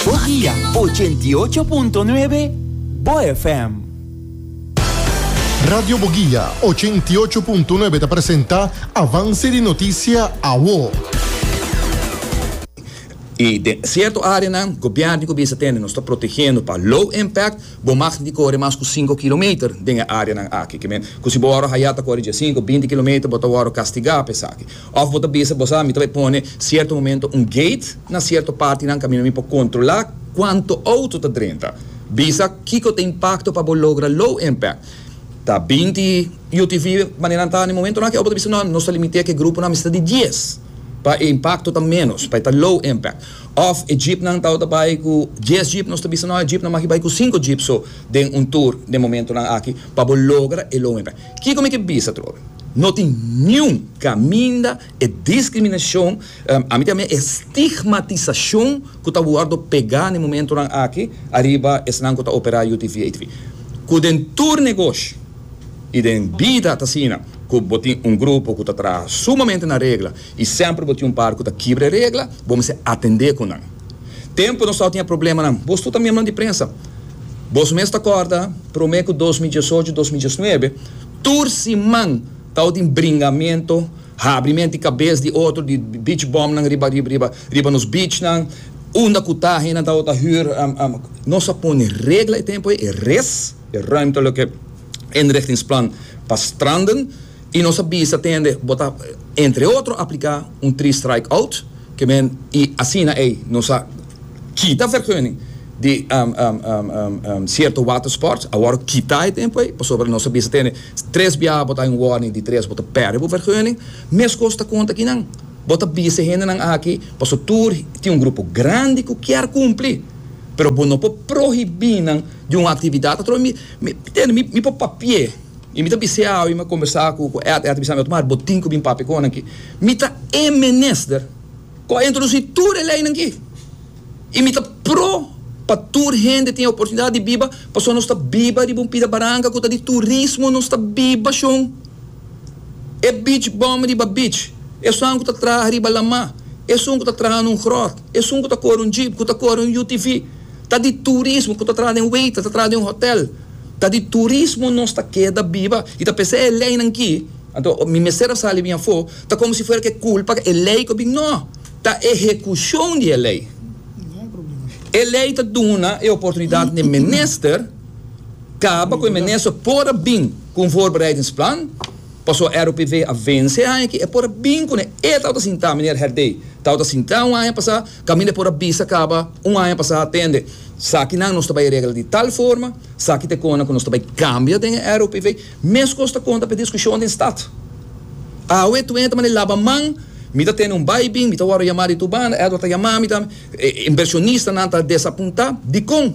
Bogía ochenta i ocho punto nuebe, bo FM. Radio Bogía ochenta i ocho punto nuebe ta presenta Avance di Noticia Awo. Y den cierto areanan, gobierno cu bisa tende nos ta protegendo pa low impact, bo mag ni core mas cu cinco kilometer den e areanan aki. Cu si bo wou haya ta core dje cinco, binti kilometer bo ta wou castiga pa esaki. Òf bo ta bisa, Bo sa, mi ta bay pone sierto momento un gate na sierto partinan kaminda mi por kontrolá kuantu outo ta drenta. Bisa kiko ta impakto pa bo logra low impact. Ta binti UTV maneran ta na e momentonan akí òf bo ta bisa nò, nos ta limit'é ku e gruponan mester di dies pa e impakto ta ménos, pa e ta low impact. Òf e jeepnan ta outa bay ku dies jeep, nos ta bisa nò, e jeepnan maki bay ku sinku jeep so den un tur den momentonan akí pa bo logra e low impact. Kiko mi ke bisa atrobe? No tin niun kaminda e diskriminashon, ami ta mia e stigmatisashon ku ta wòrdu pegá na e momentunan aki ariba esnan ku ta operá UTV, ATV. Ku den tur negoshi i den bida ta asina, ku bo tin un grupo ku ta traha sumamente na regla i semper bo tin un par ku ta kibra e regla, bo mester atendé ku nan. Tempu nos tawata tin e problemanan, bo stuta miembronan di prensa. Bos mes ta kòrda, promé ku dos mil diesocho, dos mil diesnuebe, tur siman tawba tin bringamentu, habri mente i kabes di otro di beach bumnan riba riba riba riba nos beachnan, unda ku ta hendenan tawba ta hür. Nos a pone regla e tempu ei, e res, e ruimtelijke inrichtingsplan pa stranden. I nos a bisa tende bo ta entre otro apliká un three strike out ke men i asina ei nos a kita vergunning di sierto water sports. Awor kita e tempo ei pasobra nos a bisa tende tres biaha bo ta den warning di tres bo ta pèrdè bo vergunning. Meskos ta konta kinan bo ta bisa e hendenan aki paso tur tin un grupo grandi ku kier kumpli pero bo no por prohibí nan di un aktividat atrobe mi tende mi por papia. Y mi ta bis'é awe, mi a combersa cu cu Ed, Ed a bisami, Otmar, bo tin cu bin papia cu nan aki. Mi ta e menester cu a introduci tur e leynan aki. Y mi ta pro pa tur hende tin e oportunidad di biba, pasobra nos ta biba riba un pida baranca cu ta di turismo, nos ta biba shon. E beach bum riba beach, esun cu ta traha riba lama, esun cu ta traha na un grot, esun cu ta core un jeep, cu ta core un UTV, ta di turismo, cu ta traha den waiter, ta traha den hotel. Ta di turismo nos ta keda biba y ta p'esei e leynan ki, anto mi mester a sali bin afo, ta como si fuera ke culpa e ley cu bin no, ta ehecucion di e ley. E ley ta duna e oportunidad n'e minister caba cu e minister por a bin cu un voorbereidingsplan, paso ROPV a vence e aña aki, e por a bin cu n'e e tabata sinta, meneer Herdey tabata sinta un aña pasa, Camille por a bisa caba un aña pasa atende sakinan nos ta bay regla di tal forma, saki ta e conan cu nos ta bay cambia den e ROPV, mescos ta conta p'e discusion den stad. Awe tuenta manera laba man, mi ta tene un baybin, mi ta worde yama di tur banda, Edward ta yama mi tambe, e inversionista nan ta desapunta, dicon?